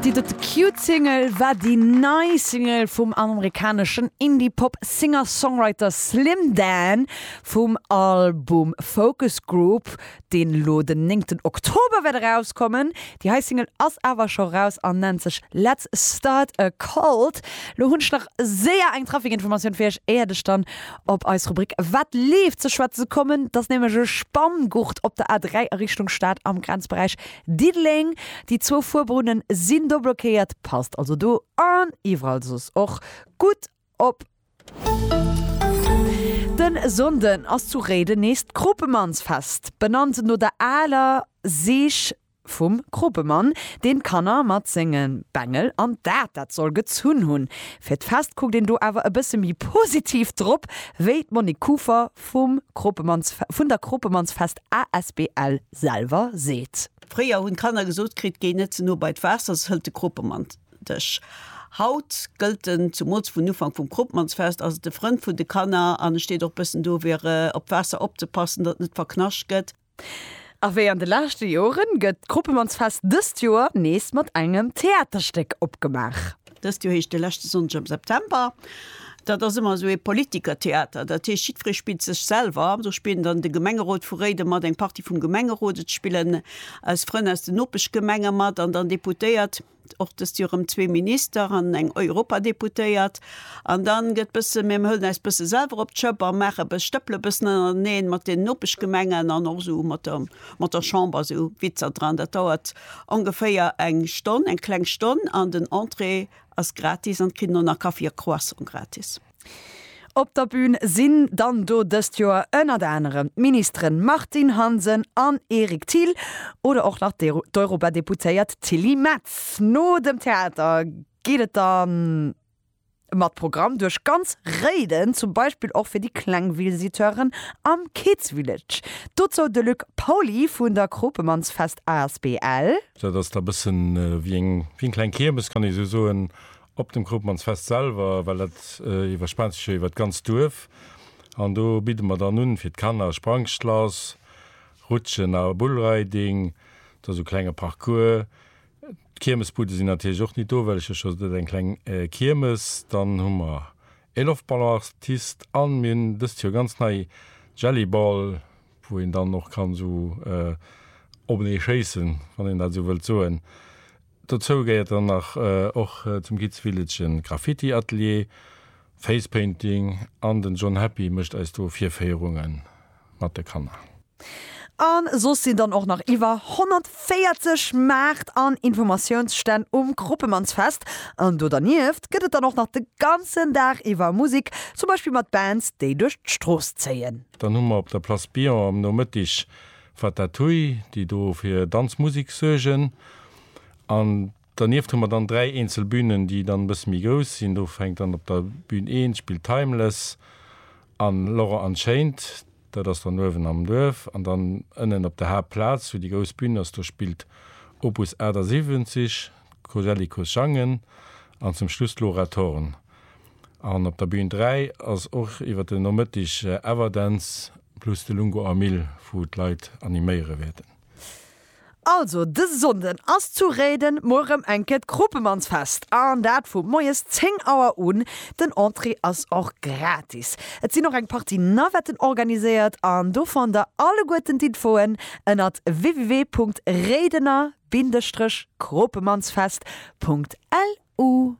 Di dote cute Single war di nei Single vum amerikaneschen Indie-Pop Singer-Songwriter Slim Dan vum Album Focus Group, deen elo den néngten Oktober wäert erauskommen. Di hei Single ass awer scho raus an nennt sech Let's Start a Cult. Lo hunn ech nach séier eng Trafic-Informatioun fir iech, éiert ech dann op eis Rubrik Wat leeft? ze schwätze ze kommen. Dass nämlech e Spanngurt op der A3 a Richtung Stad am Grenzberäich Diddeleng. Déi zwou Fuerbrunnen sinn do blockéiert. Passt also do an iwwerall soss och gutt op. De Sonnden ass zu Réiden nees d'Krupemannsfest, benannt no der aler Seech. Vum Kropemann, deen d'Kanner mat sengen Bengel an dat dat soll gezunn hunn. Fir d'Fest kuckt een do awer e bësse méi positiv drop, wéi d'Monique Kuffer vum Kropemanns vun der Kropemannsfest asbl selwer seet. Fréier hunn d'Kanner gesot kritt, géi net ze no bei d'Waasser, se hëlt de Kropemann dech. Haut gëllt en, zumools vun Ufank vum Kropemannsfest ass et de Frënd vun de Kanner an e steet och bëssen do fir op d'Waasser opzepassen, datt et net verknascht gëtt. A wéi an de leschte Joren, gëtt d'Kruppemannsfest dëst Joer nees mat engem Theaterstéck opgemaach. Dëst Joer heescht de leschte Sonndeg am September. Dat ass ëmmer esou ee Politikertheater. Dat heescht, jiddweree spillt sech selwer. Am Sot spillen dann de Gemengerot vu Réiden mat, eng Partie vum Gemengerot, et spillen eis Frënn aus den Nopeschgemenge mat an dann Deputéiert. och dëst Joer erëm zwee Minister an eng Europadeputéiert. An dann gëtt bësse, mir huelen äis bësse selwer op d'Schëpp a maache bësse, stëppele bëssen ënnereneen mat den Nopeschgemengen an och esou mat der, mat der Chamber esou Witzer dran. Dat dauert ongeféier eng Stonn, eng kleng Stonn an den Entrée ass gratis an et kritt een och nach Kaffi a Croissant gratis. Op der Bün sinn dann do dëst Joer ënnert anerem d'Ministeren Martine Hansen an Eric Thill oder och nach d'Europadeputéiert Tilly Metz. No dem Theater geet et da mat Programm duerch ganz Réiden, zum Beispill och fir déi kleng Visiteuren am Kids Village. Dozou de Luc Pauly vun der Kropemannsfest asbl. Dat ass da bëssen wéi eng kleng Kiermes, kann ee sou soen, Op dem Krupmannsfest selwer, well dat iwwerspaant sech jo iwwer d'ganzt Duerf an do bidde mer dann un fir d'Kanner Sprangschlass, Rutschen a Bullriding, da sou klenge Parcours. D'Kiermesbudde sinn natierlech och nit do, well ech jo scho sot eng kleng Kiermes. Dann hu mer ee Loftballoartist an mir hunn dëst Joer ganz nei Jellyball, wou een dann och kann sou openee schéissen, wann een dat sou wëllt soen. Dozou gehéiert dann nach och zum Kids Village e Graffiti Atelier, Face Painting an den John Happy mécht eis do Virféierunge mat de Kanner. A soss sinn dann och nach iwwer 140 Maart an Informatiounsstänn um Kruppemansfest. An do dernieft gëtt et dann och nach de ganzen Dag iwwer Musek, zum Beispill mat Bands déi duerch d'Strooss zéien. Dann hu mer op der Place Billon am Nomëttig Wat dat hui, déi do fir Danz, Musik suergen. An dernieft hu mer dann dräi eenzel Bünen, déi dann e bësse méi grouss sinn. Do fänkt dann op der Bün 1 spillt Timeless an Laurent Unchained, dat ass dann uewen am Duerf. An dann ënnen op der Haaptplaz, wou déi grouss Bün ass, do spillt Opus 78, d'Cosellicos sangen an zum Schluss d'Laura Thorn. An op der Bün 3 ass och iwwer den Nomëttig Everdance Plus de Lungo a Mill wou d'Leit animéiere wäerten. Also dëse Sonnden ass zu Réiden mol rëm eng Kéier d'Kropemannsfest an dat vu moies 10 Auer un. Den Entrée ass och gratis. Et sinn och eng Partie Navetten organiséiert an do fannt der alleguerten d'Infoen ënnert www.réidener-kropemannsfest.lu.